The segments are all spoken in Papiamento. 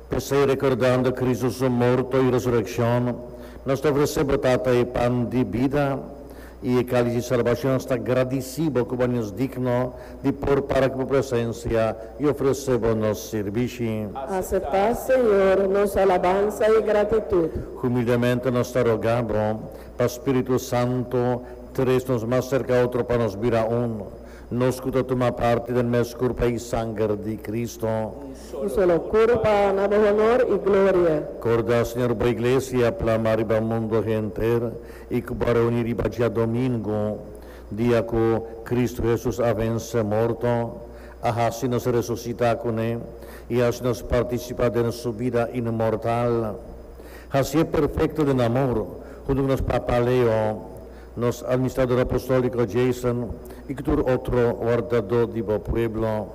P'esei, rekordando Kristu su morto i resurekshon, nos ta ofresé bo, Tata, e pan di bida i e kális di salbashon. Nos ta gradisí bo ku bo a ña nos digno di por para ku bo presensia i ofresé bo nos sirbishi. Aseptá, Señor, nos alabansa i gratitut. Humildemente nos ta rogá bo pa spiritu santu tres nos mas serka otro pa nos bira un. Nos ku ta tuma parti den mes kurpa i sanger di Kristu. Un solo kurpa na bo honor i gloria. Korda, Señor, bo Iglesia a plama riba mundu henter i ku bo a reuní riba dia domingu, dia ku Kristu Hesus a vense morto, a hasi nos resusitá ku ne i hasi nos partisipá den su bida inmortal. Hasié perfekto den amor, huntu ku nos papa Leo, Nos Administrador Apostolíco Jason i cu tur otro wardadó di bo pueblo.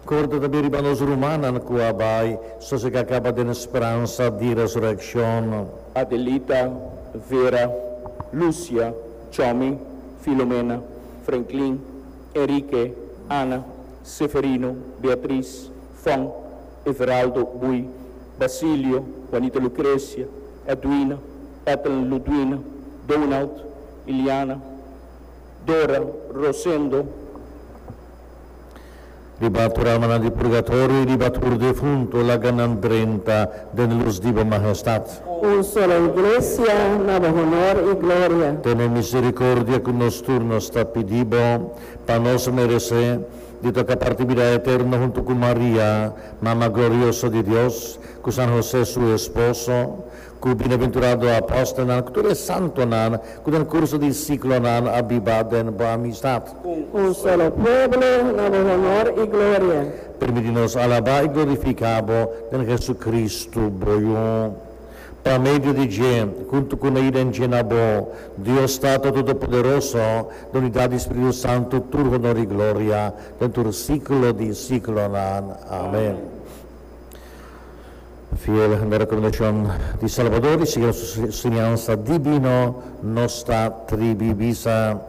Corda tambe riba nos rumannan cu a bai sosegá caba den speransa di resureccion. Adelita, Vera, Lucia, Chomy, Filomena, Frenklin, Enrique, Ana, Seferino, Beatriz, Fon, Everaldo, Buy, Basilio, Juanita Lucrecia, Edwina, Ethel, Ludwina, Donald, Iliana, Dora, Rosendo. Riba tur almanan di purgatorio y riba tur defunto laga nan drenta den luz di bo Majestad. Un solo Iglesia na bo honor y gloria. Tene misericordia cu nos tur nos ta pidi bo pa nos merece di toca parti bida eterno hunto cu Maria, Mama glorioso di Dios, cu San Jose su esposo, Ku bienaventurado apòstelnan ku tur e santonan ku den kurso di siklonan a biba den bo amistat. Un solo pueblo na bo honor i gloria. Permití nos alabá i glorifiká bo den Hesukristu, bo Yu. Pa medio di dje, huntu ku na i den dje na bo, Dios Tata Todopoderoso, na unidat di Spiritu Santu tur honor i gloria den tur siklo di siklonan. Amen. Fiel na rekomendashon di Salbador i sigui nos enseñansa dibino, nos ta tribi bisa,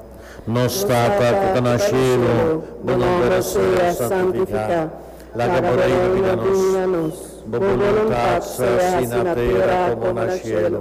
Nos Tata ku ta na shelu, bo nomber a sea santifiká. Laga bo reino bini na nos. Bo boluntat sea hasi na tera komo na shelu.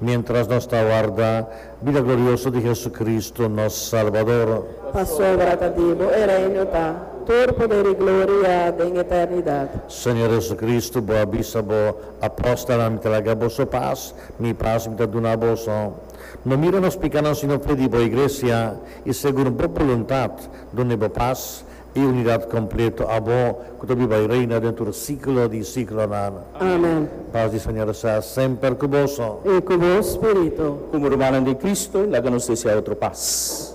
Miéntras nos ta warda bida glorioso di Jesucristo, nos Salbador. Pasobra ta di bo e reino pa tur poder i gloria den eternidad. Señor Jesucristo, bo a bisa bo apóstolnan, Mi ta laga boso pas, Mi pas Mi ta duna boso. No mira nos pikánan, sino fe di bo Iglesia, i segun bo boluntad duna bo pas. E unidat kompleto abo ku ta biba i reina den tur siklo di siklonan. Amen. Pas di Señor sa semper ku boso. I ku bo spiritu. Komo rumannan den Kristu, laga nos desea otro pas.